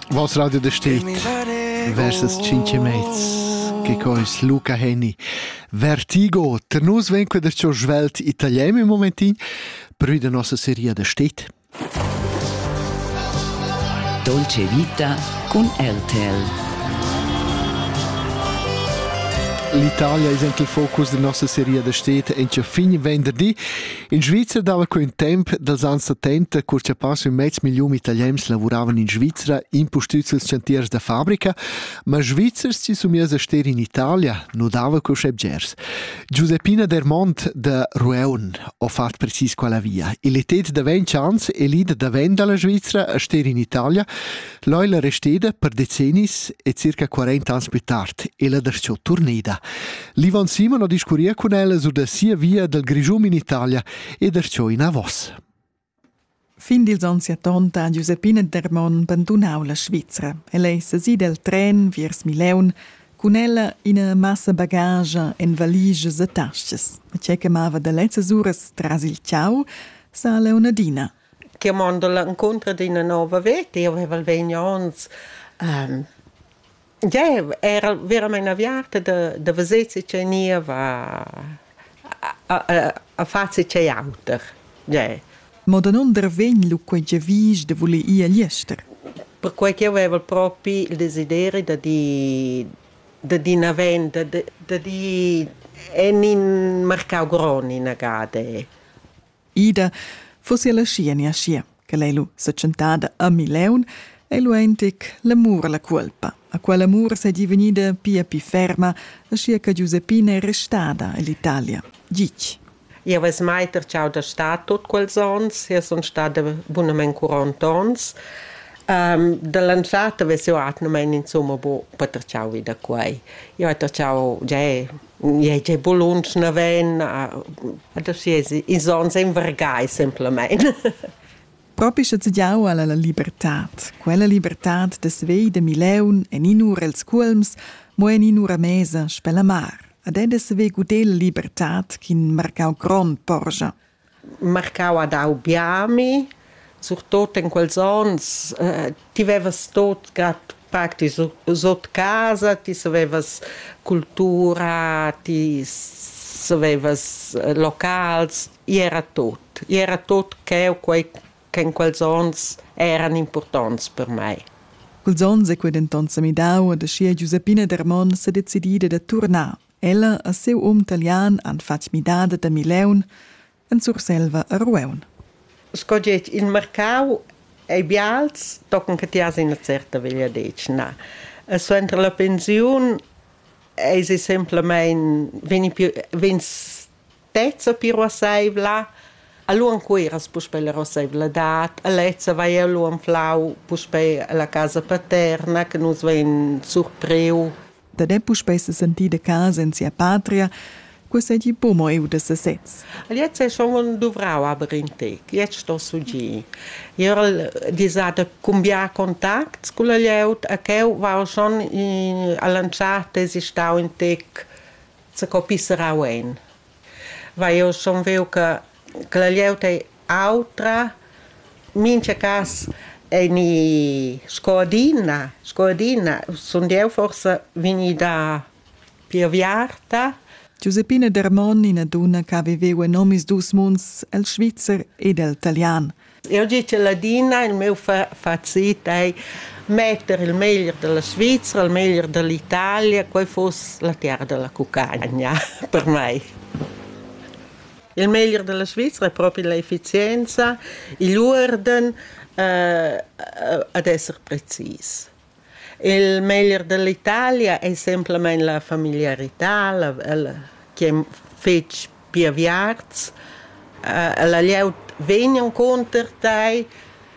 Was radio de steht versus cinque mezs che co is Luca Henny Vertigo ter nus ven queder cho svelt italiano im momentin prü de nossa seria de steht Dolce Vita con RTL L'Italia è il focus della nostra serie da stete e fin venerdì In Svizzer dava quint temp dals ans settenta, cur cha passa ün mez milliun italians lavuravan in Svizra, impustüts ils chantiers da fabrica, ma Svizzers si somiers a ster in Italia nu dava cusche bgers. Giuseppina Dermont da Rueun ho fat precis quella via. Il etet da ventg ans e l'id da venda alla Svizra a ster in Italia L'ho ella resteda per decennis e circa 40 ans plü tard e la darcheu turnida. L'Ivan Simon ho discurria cun ella sur da sia via dal Grischun in Italia e darcheu inavos. Fin dils onns 70 ha Giuseppina Dermon bandunau la Svizra. Ella ei sesi del tren viers Mileun cun ella ina massa bagage en valiges e tasches. E tgei che mava da lezzas uras tras il ciau sa Leonardina – Chi ha mando l'incontro d'üna nouva veta. Eu vaiva vegni ons già era veramaing aviarta da da veser che ch'eu gniva a far che ch'ei auter. Già. Mo danunder vegn lu quei giavisch da voler ir agl ester? Perquai ch'eu vaiva propi il desideri da di da di ina venda, da di en in marcau grond inagada. Ida fussi ella schi enia schier, che lei lu setschentada a Mileun, ei lu eintic l'amur alla cuolpa, a quell'amur seigi vegnida pia pli ferma, aschia che Giuseppina è restada ell'Italia. Gitg. Jau ves mai tertschau da star tot quels onns, io sun stada bunamain quarant onns. Um, da l'anzata ves jau atgnamain insumma bu per tertschau vi da quai. Jau hai tertschau già Ei ei buluns naven, adesso ils onns envergai semplamein. Propi sche tgiau alla la libertad. Quella libertad dess vei de Mileun en in'ura els cuolms, mo en in'ura mesa spella mar. Ad ed dess vei gudel libertad ch'in marcau grond porscha. marcau ha dau bia a mi, surtot en quels onns, eh, ti vevas tot grad pac, ti sot casa, ti savevas cultura, ti savevas eh, locals, i era tot, i era tot cheu quei che in quels onns eran impurtonts per mei. Quels onns è quei denton semidau ed aschia Giuseppina Dermon sedecidi da turnar Ella e siu um talian han fatg midada da Mileun en Surselva a Rueun. Sco getg il marcau ei bials, tochen che ti has ina certa vegliadetgna. E suenter la pensiun eisi semplamein vegni, vegns lezza pir ruassaivla, allura cuiras puspè la ruassaivladad, a lezza vai allura anflau puspè alla casa paterna che nus vein surpriu. Da de puspè se sentì de casa in sia patria, quo seigi buc mo eu de sesez. Jetzt è schon dovrau aber in tec, jetzt sto sugir. Io al disada cumbiar contacts con la lieut, a cheu va schon in, a lanciar tesi stau in tec Co pisserau ein? Vai, jeu sun viu che che la glieud ei autra. Mincha cas ei ni sco adina, sco adina sund jeu forsa vegnida pli aviarta. Giuseppina Dermon, ina dunna che ha viveu en omisdus munds, el svizzer ed el talian. Eu di che ladina, il meu facit ei metter il meglier della Svizzera, il meglier dell'Italia, quei foss la terra della cucagna per mei. Il meglier della Svizzera è proprio l'efficienza, igl urden, eh, ad esser precis. Il meglier dall'Italia ei semplamein la familiarità, la, la, chi ei fetg piaviarts. Ella glieud vegn encunter tei,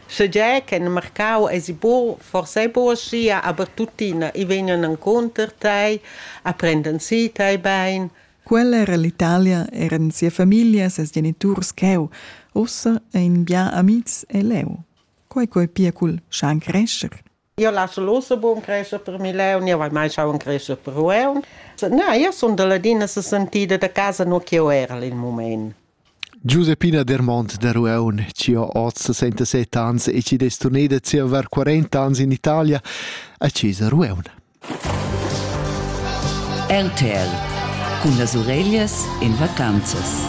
segie che in marcau esi buc, forsa ei buc aschia, aber tuttina, i vegnan encunter tei, a prendan si tei bein. Quella era l'Italia, eran sia famiglia, ses geniturs cheu. Ussa ein bia amitgs e leu. Quei quei pia cul schan crescher. Io lasso l'osso bun crescer per Mileu, io vai mai schauen crescer per Rueun. Na, io sun da ladina se sentida da casa no che era il moment. Giuseppina Dermont da Rueun, ci ho oz 67 ans e ci destuneda ci aver 40 ans in Italia, a Cesa Rueun. RTL cun las ureglias in vacanzas.